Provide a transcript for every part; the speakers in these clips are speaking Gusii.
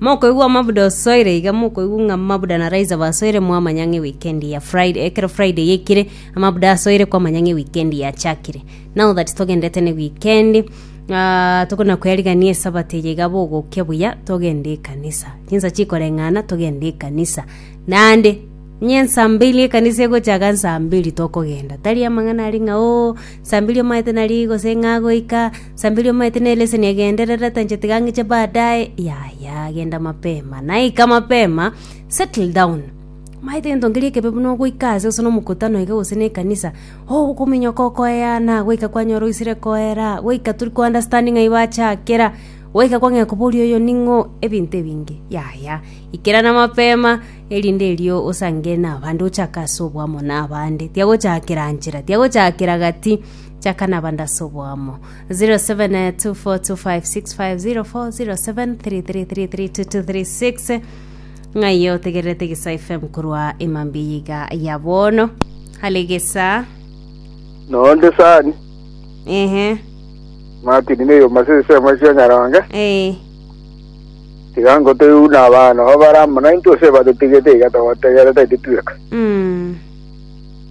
Mokoigwa omabuda osoire, iga mokoigwa ng'a mabuda na Raiza basoire, mwamanya ng'a ewikendi ya Friday, ekero Friday yaikire, amabuda asoire, kwamanya ng'a ewikendi yachakire. Now that togendete ne wikendi, ah, tokona koyarigania esabato eye iga bogokia buya, togende ekanisa. Chinsa chikoreng'ana, togende ekanisa. Naende, onye ensa mbili ekanisa egochaka nsa mbili tokogenda, tari amang'ana aria ng'a oo, nsa mbili omanyete nari gose ng'a goika, Samberia omaete ne leseni agenderere, tancheti gang'iche baadaye, yaya genda mapema. Naika mapema, settle down. Omaete gento nkeria ekebe buna ogoika aase gose nomokutano iga gose ne ekanisa, oh okominyoka okoeana, goika kwanyora oisire koera, goika tori ko understand ng'ai bachakera, goika kwang'ea koboria oyo ning'o, ebinto ebinge. Yaya, ikerana mapema, erinde erio osangere nabande ochake ase oboamo nabande. Tiagochakera nchera, tiagochakera gati. Chaka na bandase oboamo 07242565040733332236 ng'aiyo otegererete gesa fm korwa emambia yiga ya bono hale gesa nonde sani ehe martin neyoma sesemo sia nyaronge eh tiga ngotoyuna abana babare amo naintwe ase batetigete iga togotegerete titweka mm.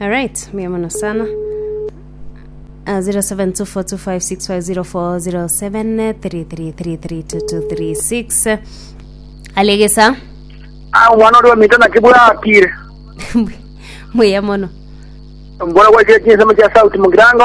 Alright, mbuya mono sana. Uh, 07242565040733332236 alegesa Ah, omwana oria omito naki bwakire mbuya mono mbora gwachire chinsemo chia sauti mugirango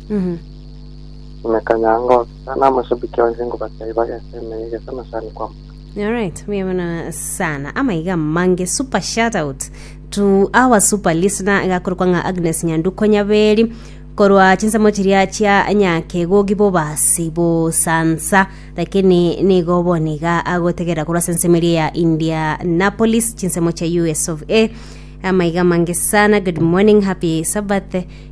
Imeka nyango, ekero namashabiki onsi ngobatebi bagese emeye gese amasani kwamboka. Alright, buya mono sana. Amaiga mange super shout out to our super listener gakorokwa ng'a Agnes Nyanduko Nyaberi korwa chinsemo chiria chia nyakegogi bobasi bosansa lakini nigo boniga agotegerera korwa ase ensemo eria ya Indianapolis chinsemo chia US of A amaiga mange sana good morning happy sabbath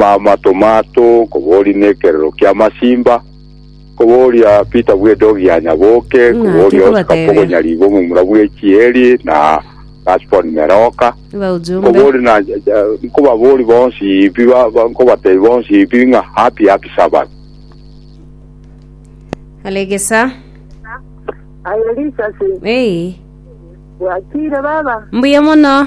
Amato mato kobooria nekerero kia masimba, kobooria Peter bw'edogi ya nyaboke, Ng'a kobooria Oscar tikobatebia. pogonyari bw'omomura bw'echieri na Gaspon meroka, Baujumbe. kobooria na nkobabooria bonsi pi ba- ba- nkobatebia bonsi pi ng'a happy happy sabbath. Alegesa. Aye risasi Ei. bwakire baba Mbuya mono.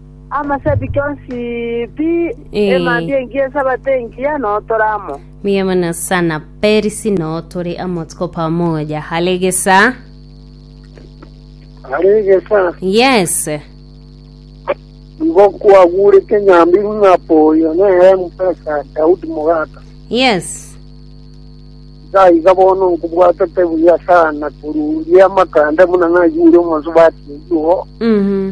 Amasabiki onsi pi, Ee. emambia engiya, esabato engiya, noo tore amo. Mbuya mono sana Perisi, noo tore amo tuko pamoja. Hale gesa. Aregesa, Yes. igo kwagurete nyambibu ng'a poyo nere mfesa Daudi mogaka. Yes. Gaiga bono nkobwatete buya sana koruria amakanda buna nayure omonsi batiigo. Mhm.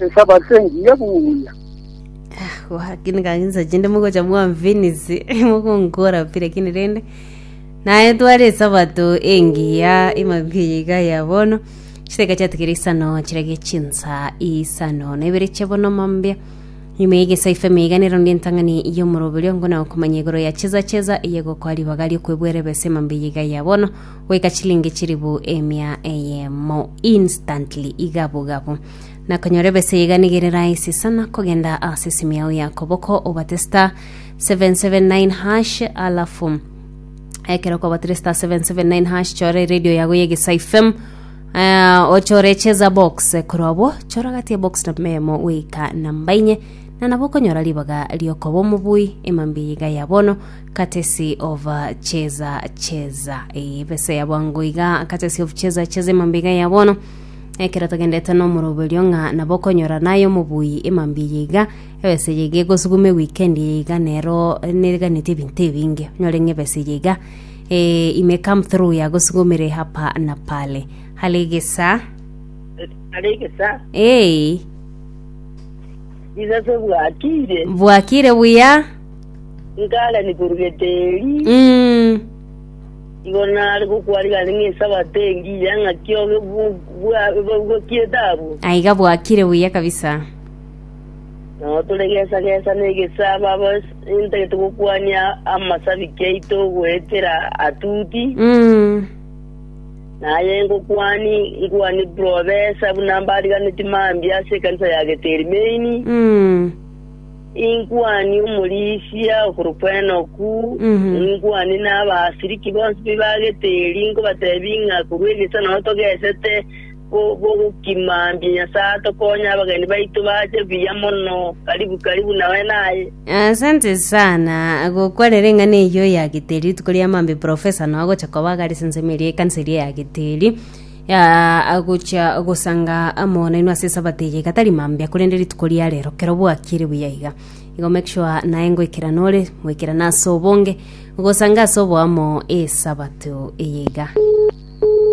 Nsaba ase engiya buya. Lakini kanisa chinde mogocha mwamfinisi mogonkora pi lakini rende naye tware esabato engiya emabia yiga ya bono chiteka chiatigere isano chirage chinsa isano na ibere chia bono mambia nyuma yegesa ife meiga nero ndi entang'ani y'omoroberio ngona okomanya igoro ya cheza cheza eyegokwa ribaga riokwebwere bese mambia yiga ya bono goika chilingi chilifu emia eyemo, instantly, igabugabu. Na konyora ebesa eye iga nigere rahisi sana, kogenda ase esimu yao ya koboko obate star 779 hash alafu ekero okobatire star 779 hash chore radio yago ya Egesayi FM eh, ochore cheza box korwa obwo chora gati ya box namba eyemo goika namba inye na nabo okonyora ribaga riokoba omobui emambia iga ya bono Katesi of Cheza Cheza. Eye ebesa ya bwango iga Katesi of Cheza Cheza emambia iga ya bono. Ekero togendete nomoroberio ng'a nabo okonyora naye omobui emambia eye iga, ebesa eye iga egosuguma ewikendi eye iga nero neriganeti ebinto ebinge. Onyore ng'a ebesa eye iga eh, ime come through yagosugumire hapa na pale. Hale egesa Hare egesa, eh, Jesus bwakire. bwakire buya Nkarani korwa geteri, igoro nare gokwarigane ng'a esabato engiya ng'aki obe bu- bwa- bu- bwakiete abwo. aiga bwakire buya kabisa Nao toregesagesa negesabo abo intagete gokwania amasabiki aito goetera atuti. Mm. Naye ngokwani nkwani profesa buna mbariganeti mambia ase ekanisa ya geteri main. Mm. Inkwanie omorisia okorokwa Enoku, inkwanie n'abasiriki bonsi be baagete eri, nkobateebie ng'a korwa egesaku nao togesete gokimambia Nyasae atokonye abageni baito bache buya mono karibu karibu nawe naye. Asante sana gokwarera ring'ana eyio ya geteri rituko ria maambia profesa nao gocha koba gare sensemo eria ekanisa eria ya geteri agochia gosanga amo nainwe ase esabato eye iga tari mambia, korende rituko ria rero kero bwakire buya iga. Igo make sure naye ngoikera nore, moikerane ase obonge, gosanga ase oboamo esabato eye iga.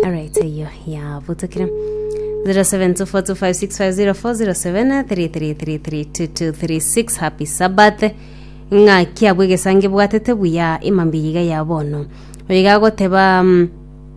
Alright, eyo yabotokire. 07242506504073332236 happy sabbath ng'aki abwo egesango ebwatete buya imambia iga ya bono oyo iga agoteba mm,